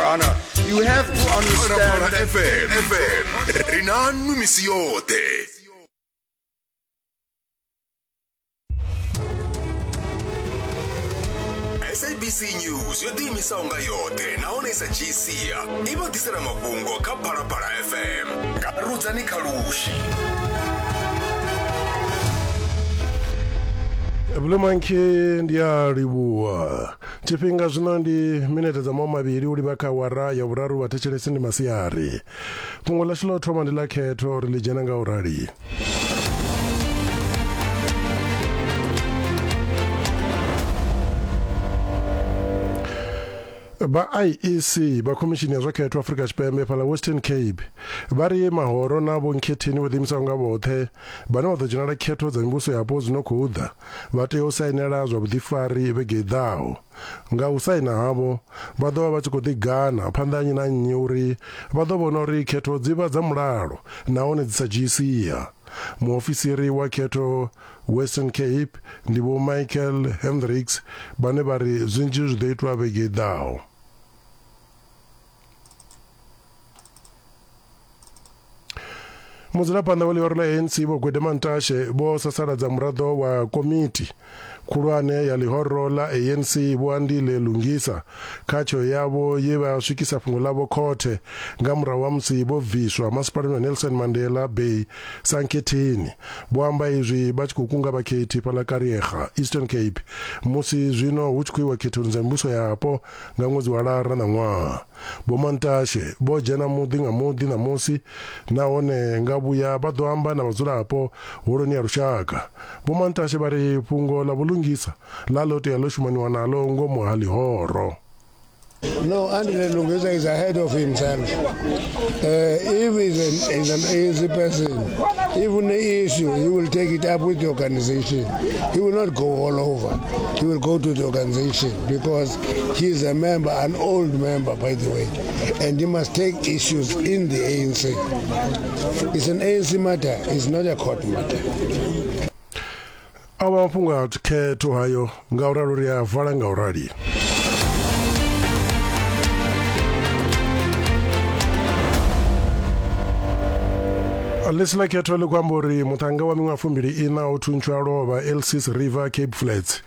kana you have to understand fm fm ri na nnu misi yoṱhe sabc news yo ḓiimisaho nga yoṱhe nahone i sa dzhii sia i vha ḓisela mafhungo kha phalaphala fm nga rudzani kha lushi Blue Monkey ndi a livhuwa Tshifhinga zwino ndi minete dza maho mavhili u livha kha awara ya vhuraru vha thetshelesi ndi masiari. Fhungo ḽashu ḽa u thoma ndi ḽa khetho ri ḽi dzhena nga u rali. vha IEC vha khomishini ya zwa khetho Afrika Tshipembe fhala Western Cape vha ri mahoro na vho nkhetheni vho ḓiimisaho nga vhoṱhe vhane vha ḓo dzhenela khetho dza mivhuso yapo dzi no khou ḓa vha tea u sainela zwa vhuḓifari vhege i ḓaho. Nga u saina havho, vha ḓo vha vha tshi khou ḓigana phanḓa ha nnyi na nnyi uri vha ḓo vhona uri khetho dzi vha dza mulalo nahone dzi sa dzhii sia. Muofisiri wa khetho Western Cape ndi Vho Michael Hendricks vhane vha ri zwinzhi zwi ḓo itwa vhege i ḓaho. mudzulaphanḓa wa ḽihoro ḽa anc vho gwede mantashe vho sasaladza muraḓo wa komiti khulwane ya ḽihoro ḽa anc vho andile lungisa kha tsheo yavho ye vha swikisa fhungo ḽavho khothe nga murahu ha musi vho bviswa masipalani wa nelson mandela bay sankhetheni vho amba izwi vha tshi khou kunga vhakhethi fhaḽa kariega eastern cape musi zwino hu tshi khou iwa khethoni dza mivhuso yapo Nga ṅwedzi wa Lara na ṅwaha, vhomantashe vho dzhena muḓi nga muḓi ṋamusi nahone nga vhuya vha ḓo amba na vhadzulapo Holoni ya Lushaka. Vhomantashe vha ri fhungo ḽa vhulungisa ḽa ḽo tea ḽo shumaniwa naḽo ngomu ha ḽihoro. No, Andile Lungisa is ahead of himself. Uh, if he's an, he's an easy person, even the issue, he will take it up with the organization. He will not go all over. He will go to the organization. because he is a member, an old member, by the way, and he must take issues in the ANC. It's an ANC matter, it's not a court matter. awa mafhungo a khetho hayo nga u ralo ri a vala nga u rali ḽisi ḽa khetho ḽi khou amba uri muṱhannga wa miṅwaha fumbili ina o thuntshiwa lovha elsis river cape flats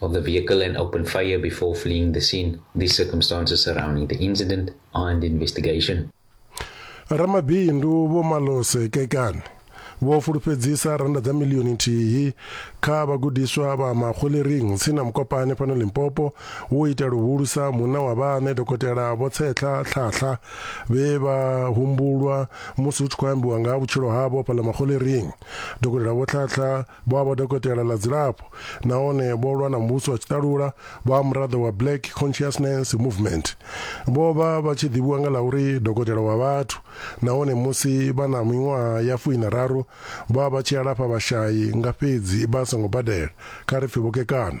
of the vehicle and opened fire before fleeing the scene. The circumstances surrounding the incident are under investigation. ramabindu vho malose kekane vho fulufhedzisa randa dza milioni nthihi kha vhagudiswa vha makgolering tsini na mukopane fhano limpopo wo ita luhulusa munna wa vhaṋe dokotela vho tshehla tlhahla vhe vha humbulwa musi hu tshi khou ambiwa nga ha vhutshilo havho fhala makgolering dokotela vho tlhahla Vho a vha dokotela ḽa dzilafho nahone vho lwa na muvhuso wa tshiṱalula vha muraḓo wa Black Consciousness Movement. Vho vha vha tshi ḓivhiwa nga ḽa uri dokotela wa vhathu nahone musi vha na miṅwaha ya fuiṋa raru vha vha tshi alafha vhashai nga fhedzi vha songo badela, kha ri pfi vho kekana.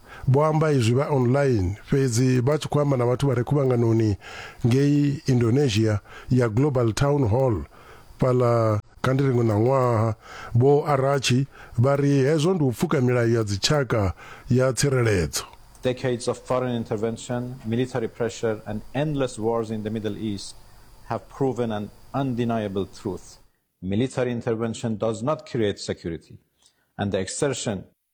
Vho amba izwi vha online fhedzi vha tshi khou amba na vhathu vha re khuvhanganoni ngei Indonesia ya Global Town Hall fhaḽa kha ndi ri ngo ṋaṅwaha. Vho Arachie vha ri hezwo ndi u pfuka milayo ya dzitshaka ya tsireledzo. Decades of foreign intervention, military pressure and endless wars in the Middle East have proven an undeniable truth, military intervention does not create security and the exertion,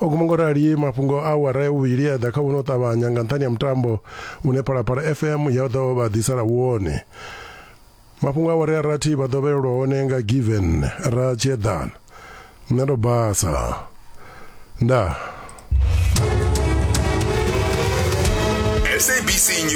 O guma ngo rali mafhungo a awara ya vhuvhili a ḓa kha vhuno ṱavhanya nga nṱhani ha mutambo une Phalaphala FM ya ḓo vha ḓisela wone. Mafhungo a awara ya rathi vha ḓo vhelelwa hone nga Given ra Tshieḓana. Nṋe ndo basa. Ndaa. SABC News.